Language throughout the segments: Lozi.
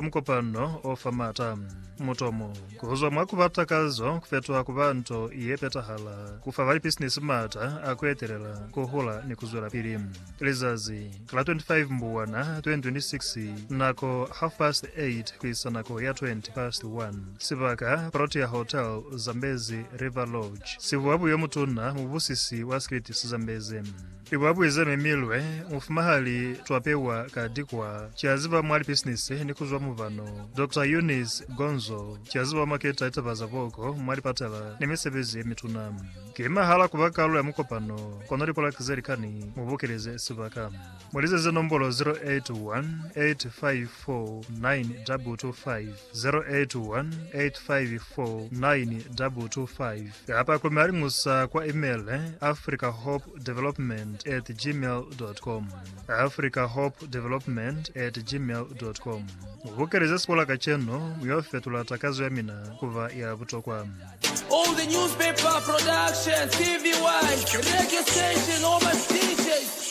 Mukopano o fa m'ata. Mutomo, ku zwa mwa ku ba takazo ku fetoha ku ba nto ye petahala, ku fa balipisinisi m'ata a ku etelela, ku hula, ni ku zwelapili. Lizazi la 25 Mbubwana 2026, nako, half past 8 ku isa nako ya 20 past 1. Sibaka, Protea Hotel, Zambezi River Lodge. Sivuabuyo mutuna, mubusisi wa Scritis Zambezi. I ba buiza mi milwe mufuma ha li twapewa ka dikwa ki a ziba mwa lipisinisi ni ku zwa mubano, Doctor Eunice Gonzo, ki a ziba mwa keta litaba za boko mwa lipatala ni misebezi ye mituna. Ki mahala ku ba kalulo ya mukopano, kono lipolaki ze likani mu bokeleze sibaka. Mu lizeze nombolo 0818549225. 0818549225 kapa ku Malingusa kwa email africahopedevelopment at gmail.com africahopedevelopment at gmail.com Mubukeleze sibola kacenu, muyo fetula takazo ya mina kuba ya butokwa. All the newspaper production, TV1, radio station, all my DJs.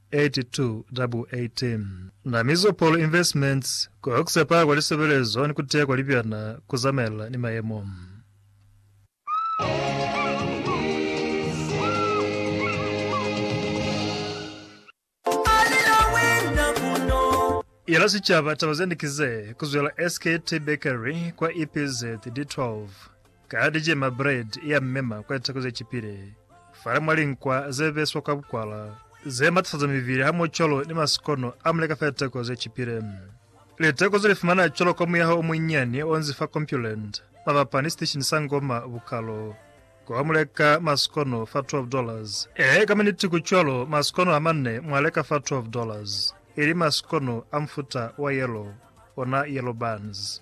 8218 Na Mizopolo Investments ku Oxepa kwa Lisebelezo ni ku Teya kwa Libyana ku Zamaelana ni Mayemo. Yela sicaba taba zende kize, kuzwela SKT Bakery kwa EPZ, D12. Ka di cema bread ya mmema kwa litako ze cipile, fale mwa linkwa ze beswa kwa bukwala, ze matasaza mibili hamoho cwalo ni masikono a muleka fa litako ze cipile. Litako ze li fumana cwalo kwa muyaho o munyinyani o nzi fa Compuland, mabapa ni siteshini sa Ngoma Bukalo, kwa muleka masikono fa 12 dollars. Ee, ka maniti ku cwalo, masikono a manne mwa leka fa 12 dollars, ili masikono a mufuta wa yellow, ona yellow buns.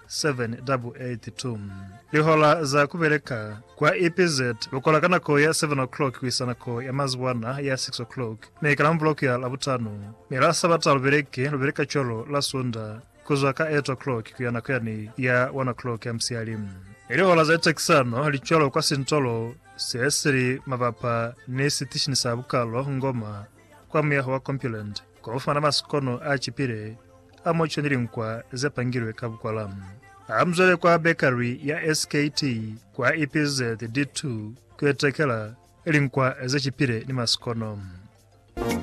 782. Lihola za ku beleka kwa EPZ lu kola ka nako ya 7 o'clock ku isa nako ya mazuwana ya 6 o'clock, mi ka la Muvuloko ya Labutanu ni la Sabata lu beleki, lu beleka cwalo la Sunda ku zwa ka 8 o'clock ku ya nako yani ya 1 o'clock ya musiyali. Mi lihola za litekisano li cwalo kwa sintolo se si li mabapa ni sitishini sa bukalo Ngoma kwa muyaho wa Compuland. Kwa ku fumana masikono a cipile a muco ni linkwa ze pangilwe ka bukwala, ha mu zwele kwa bekari ya SKT kwa EPZ D2 ku itekela linkwa ze cipile ni masikono.